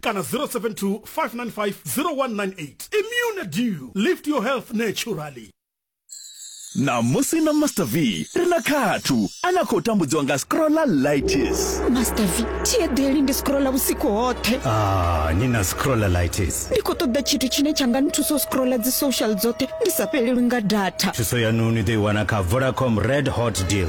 kana 072 595 0198 immune dew lift your health naturally ṋamusi na master v ri na khathu a na khou tambudziwa nga scrolla lightis master v thi eḓeli ndi scrolla vhusiku hoṱhe ah, ni na scrolla lightis ndi khou ṱoḓa tshithu tshine tsha nga nthusa u scrolla dzi social dzoṱhe ndi sa fhelelwi nga data thuso yanu ni ḓo i wana kha vodacom red hot deal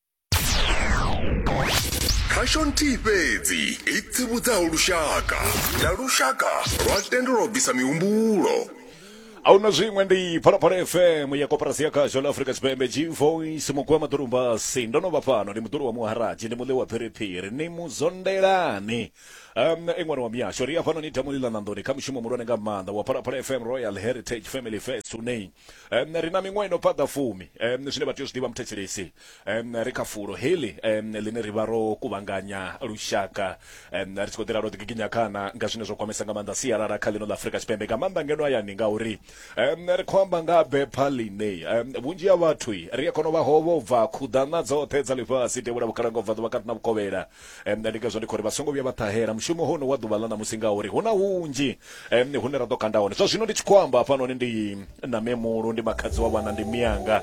khasho nthihi fhedzi i tsivhudzaho lushaka na lushaka lwa tendelwa u bvisa mihumbulo ahuna zwiṅwe ndi phalaphala fm ya koporasi ya khasho la afrika tshipembe g voice muku wa maḓorumbasi ndo no vha fhano ndi muḓulu wa muharaji ndi muḽi wa phiriphiri ni muzondelani um i ṅwana wa mihasho ri ya fhano ni ita muḽila ṋanḓoni kha mushumo muhulwane nga maanḓa wa phalaphala fm royal heritage family fest une um, ri na miṅwaha ino paḓa fumi um, zwine vha tea u zwi ḓivha muthetshelesi um, ri kha fulo heḽi um, ḽine ri vha ro kuvhanganya lushaka um, ri tshi khou ḓela ro ḓigiginya khana nga zwine zwa kwamesa nga maanḓa sialala kha ḽino ḽa afurika tshipembe nga maanḓa ngeno hayani ngauri um, ri khou amba nga bepha ḽine um, vhunzhi ha vhathu ri a kona u vha hovho bva khuḓana dzoṱhe dza ḽifhasi tevhula vhukhalankobva ḓuvha kati na vhukovhela em, ndi ngazwo ndi khou ri vha songo vhuya vha ṱahela mushumo hono wa ḓuvha ḽa ṋamusi ngauri hu na hunzhi em, hune ra ḓo kanda hone zwa zwino ndi tshi khou amba hafhanoni ndi na memulu ndi makhadzi wa vhana ndi miyanga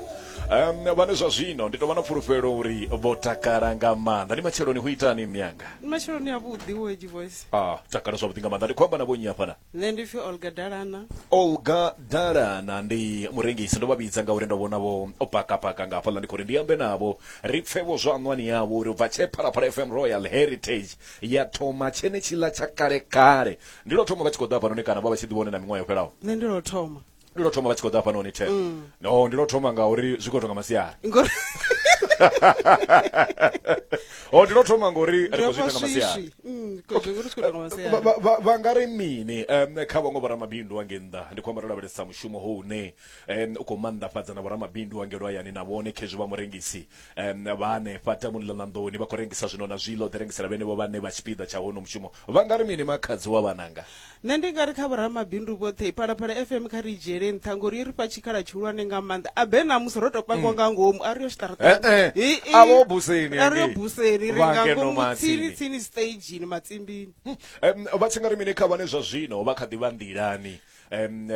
em, vhane zwa zwino ndi tou vha na pfulufhelo uri vho takala nga maanḓa ndi matsheloni hu itani miyanga Ndi matsheloni a vhuḓi wo edgy voice. ah takala zwavhuḓi nga maanḓa ndi khou amba na vhonnyi hafhaḽa nṋe ndi pfi olga dalana olga dalana ndi murengisi ndo vha vhidza ngauri ndo vhona vho o pakapaka nga hafhaḽa ndi khou ri ndi ambe navho ri pfe vho zwa ṋwani yavho uri ubva tshe phalaphala fm royal heritage ya thoma tshenetshiḽa tsha kale kale ndi lwo thoma vha tshi khou ḓa hafhanoni kana vha vha tshi ḓivha hone na miṅwaha yo fhelaho nṋe ndi lwo thoma ndi lwo thoma vha tshi khou ḓa hafhanoni ten mm. no ndi lwo thoma nga uri zwi khou tonga masiari o oh, ndi lwo thoma ngori ri khou zwi ita nga masiari mm, vha nga ri mini um kha vhaṅwe vhoramabindu wange nnḓa ndi khou amba ro lavhelesa mushumo ho une um u khou maanḓafhadza na vhoramabindu wange lwayani na vhone khezwi vha murengisi um, vha hanefha tamuni ḽa ṋanḓoni vha khou rengisa zwino na zwiḽa u ḓi rengisela vhenevho vhane vha tshipiḓa tsha hono mushumo vha nga ri mini makhadzi wa vhananga nṋe ndi nga ri kha vhoramabindu vhoṱhe phalaphala fm kha ri dzhiele nṱha ngori i ri fha tshikhala tshihulwane nga maanḓa a be namusi ro to pangiwa nga ngomu a ri yo xiṱaraṱaavho buseni a ri yo buseni ri nga ngomu tsini tsini stagini matsimbini vha tshi nga ri mini kha vhane zwa zwino vha kha ḓi vha nḓilani um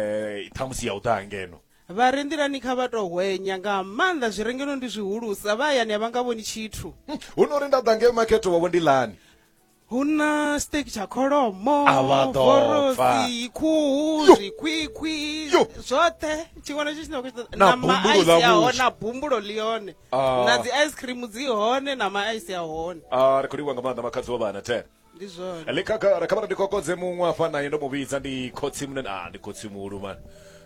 ṱhamusi ya u ḓa ngeno Vha re nḓilani kha vha tou hwenya nga maanḓa zwi re ngeno ndi zwihulusa, vha hayani a vha nga vhoni tshithu. Hu no ri nda ḓa ngei makhethe wavho ndilani. Hu na steak tsha kholomo, A vha ḓo vorosi, pfa. khuhu, Yo! zwikhwikhwi, Yo! zwoṱhe tshiṅwe na tshiṅwe tshine wa khou tshi ṱoḓa. Na Na bumbulo maisi ḽa a hone, vhuswa. na bumbulo ḽi hone. Ah. Na dzi ice cream dzi hone na maisi a hone. Ah, ri khou livhuwa nga maanḓa makhadzi wa vhana thera. ndi zwone ḽi khagala kha vha ndi kokodze muṅwe afha naye ndo mu vhidza ndi khotsi munene ah ndi khotsi muhulu man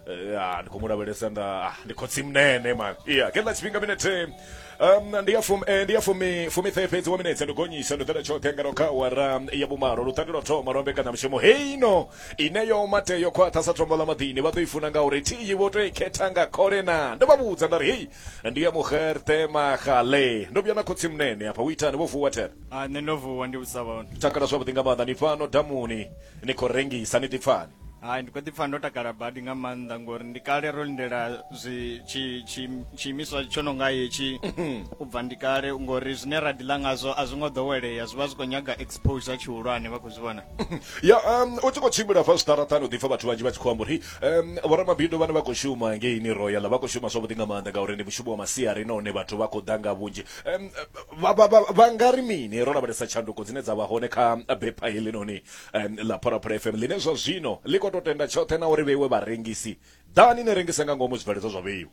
Eh, ah ndi khou mu lavhelesa nda ah ndi khotsi munene man iya khe ḽa tshifhinga minete um ndi ya fumi eh, ndi ya fumi fumi ṱhe fhedzi wa minetse ndo gonyisa ndo ḓela tshoṱhe ngeno kha awara ya vhumalo luṱandi lwa thoma lwa mbekanyamushumo heino ine yo mate yo khwaṱha sa tombo ḽa maḓini vha ḓo i funa ngauri thiyi vho tou i khetha nga khole na ndo vha vhudza nda ri hei ndi ya mugerthe magale ndo vhuya na khotsi munene afha u itani vho vuwa thera Ah, nṋe ndo vuwa ndi vhusa vhone takala zwavhuḓi nga maanḓa ni fhano damuni ni khou rengisa ni ḓipfani hai ndi khou ḓi pfa ndo takala badi nga maanḓa ngori ndi kale ro lindela zwi tshi- tshi- tshiimiswa tsho no nga hetshi u bva ndi kale ngori zwine ra ḓi ḽa ngazwo a zwi ngo ḓowelea zwi vha zwi khou nyaga exposure tshihulwane vha khou zwi vhona ya um, u tshi khou tshimbila fa zwiṱaraṱani u ḓipfa vhathu vhanzhi vha tshi khou amba uri um, vhoramabindu vhane vha khou shuma ngeini royal vha khou shuma zwavhuḓi nga maanḓa ngauri ndi mushumo wa masiari nahone vhathu vha khou ḓa nga vhunzhi um, vha, vha, vha, vha nga ri mini ro lavhelesa tshanduko dzine dza vha hone kha bepha helinoni um, ḽa phalaphala fm ḽine zwa zwino ḽi khou tou tenda tshoṱhe na uri vheiwe vharengisi ḓani ni rengise nga ngomu zwibveledzwa zwa vheiwe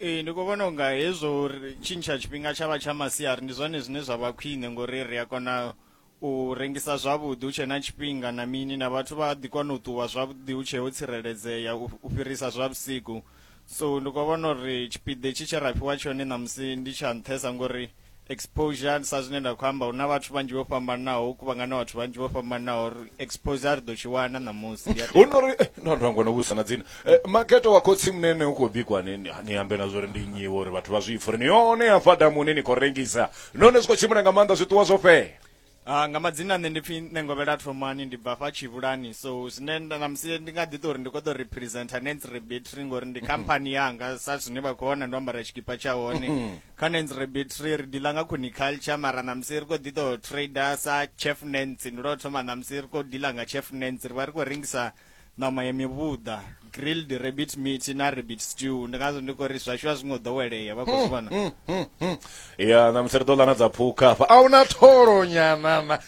ee ndi khou vhona unga hezwo uri tshintsha tshifhinga tsha vha tsha masiari ndi zwone zwine zwa vha khwine ngori ri a kona u rengisa zwavhuḓi hu tshe na tshifhinga na mini na vhathu vha ḓi kona u ṱuwa zwavhuḓi hu tshe ho tsireledzea u fhirisa zwa vhusiku so ndi khou vhona uri tshipiḓa tshi tshe ra fhiwa tshone ṋamusi ndi tsha nṱhesa ngori exposure sa zwine nda khou amba hu na vhathu vhanzhi vho fhambanaho u kuvhangana vhathu vhanzhi vho fhambanaho uri exposure ri ḓo tshi wana ṋamusi hu no ri eh, no ndango no vhusa na dzina eh, maketo wa khotsi munene u khou bikwa ni ambe na zwo ri ndi nyiwo uri vhathu vha zwi ipfa uri ni yone ya fadamuni ni khou rengisa none zwi khou tshimbila nga maanḓa zwiṱuwa zwo fhela Uh, nga madzina nṋe ndi pfi nengovhela thomani ndi bva fha tshivhulani so zwine namusi ndi nga ḓi to uri ndi kho ḓo representa nens rebetry ngori ndi khamphani yanga sa zwine vha khou vhona ndo ambara tshikipa tsha hone kha nens rebetry ri diḽa nga coniculture mara namusi ri khou ḓi to trader sa chef nens ndi lwo thoma namusi ri khou diḽa nga chef nens ri vha ri khou rengisa ṋama ya mivhuḓa grilled rabbit meat na rabbit stew ndi ngazwo ndi khou ri zwashu a zwi ngo ḓowelea vha khou zwi vhona ya ṋamusi ri ḓo ḽa na dza phukha hafha a huna tholo nyanana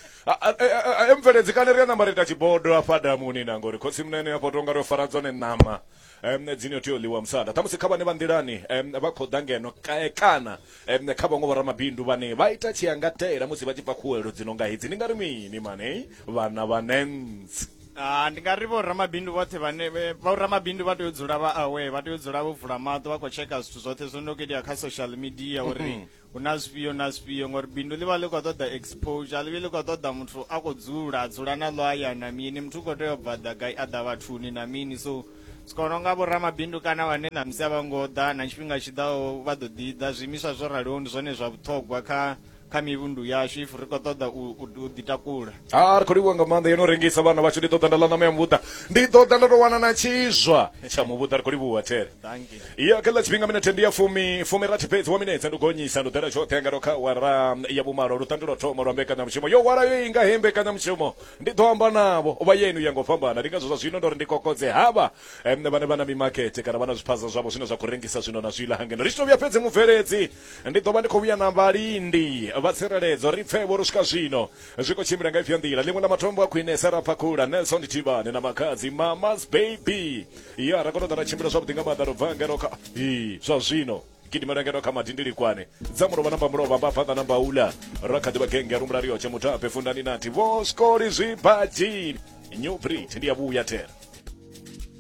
emveledzi kane ri a namba ri ita tshibodo afha damuni na ngori khotsi mnene afho tonga ro fara dzone ṋama em, dzine tea u ḽiwa musanda ṱhamusi kha vhane vha nḓilani em, vha khou ḓa ngeno ka- eh, kana em, kha vhaṅwe vhoramabindu vhane vha ita tshiangatela musi vha tshi bva khuwelo dzi no nga hedzi ni nga ri mini mane vhana vha nentsi Ah, ndi nga ri vho ramabindu vhoṱhe vhane vhe- vho ramabindu vha tea u dzula vha aware vha tea u dzula vho vula maṱo vha khou tsheka zwithu zwoṱhe zwo no khou itea kha social media uri hu na zwifhio na zwifhio ngori bindu ḽi vha ḽi khou ṱoḓa exposure ḽi vhe ḽi khou ṱoḓa muthu a khou dzula a dzula na ḽo aya na mini muthu u khou tea u bva ḓa gai a ḓa vhathuni na mini so zwi kona nga vhoramabindu kana vhane na musi a vha ngo ḓa na tshifhinga tshi ḓaho vha ḓo ḓi ḓa zwiimiswa zwo raliho ndi zwone zwa vhuṱhogwa kha kha mivhundu yashu if ri khou ṱoḓa u ḓitakula a ri khou livhuwa nga maanḓa yo no rengisa vhana vhashu ndi ḓo ḓa nda ḽa ṋama ya muvhuḓa ndi ḓo ḓa nda tou wana na tshizwa tsha muvhuḓa ri khou livhuwa there ya kha ḽa tshifhinga minethe ndi ya fumi fumi rathi fhedzi wa minetse ndi gonyisa ndi ḓela tshoṱhe nga ndo kha wara ya vhumalo lu tandulwa thoma lwa mbekanyamushumo yo wala yo inga he mbekanyamushumo ndi ḓo amba navho vha yenu ya ngo fhambana ndi ngazwo zwa zwino ndo ri ndi kokodze havha mne vhane vha na mimakete kana vha na zwiphaza zwavho zwine zwa khou rengisa zwino na zwiḽa hangeno ri tshi to vhuya fhedzi mubveledzi ndi ḓo vha ndi khou vhuya na vhalindi vha tsireledzo ri pfe vho ri swika zwino zwi khou tshimbila nga ifhio nḓila ḽiṅwe ḽa matombo a khwinesa ra phakhula nelson thivhane na makadzi mamas baby ya ra kona u ḓa ra tshimbila zwavhuḓi nga maanḓa ro bva ngeno kha i zwa zwino gidimela ngeno kha madindilikwane dza mulovha namba mulovha mba fhaṱa namba ula ra kha ḓivha genge ya rumula riyotshe mutape fundani nati vho skoli zwibadzini new brit ndi ya vhuya thera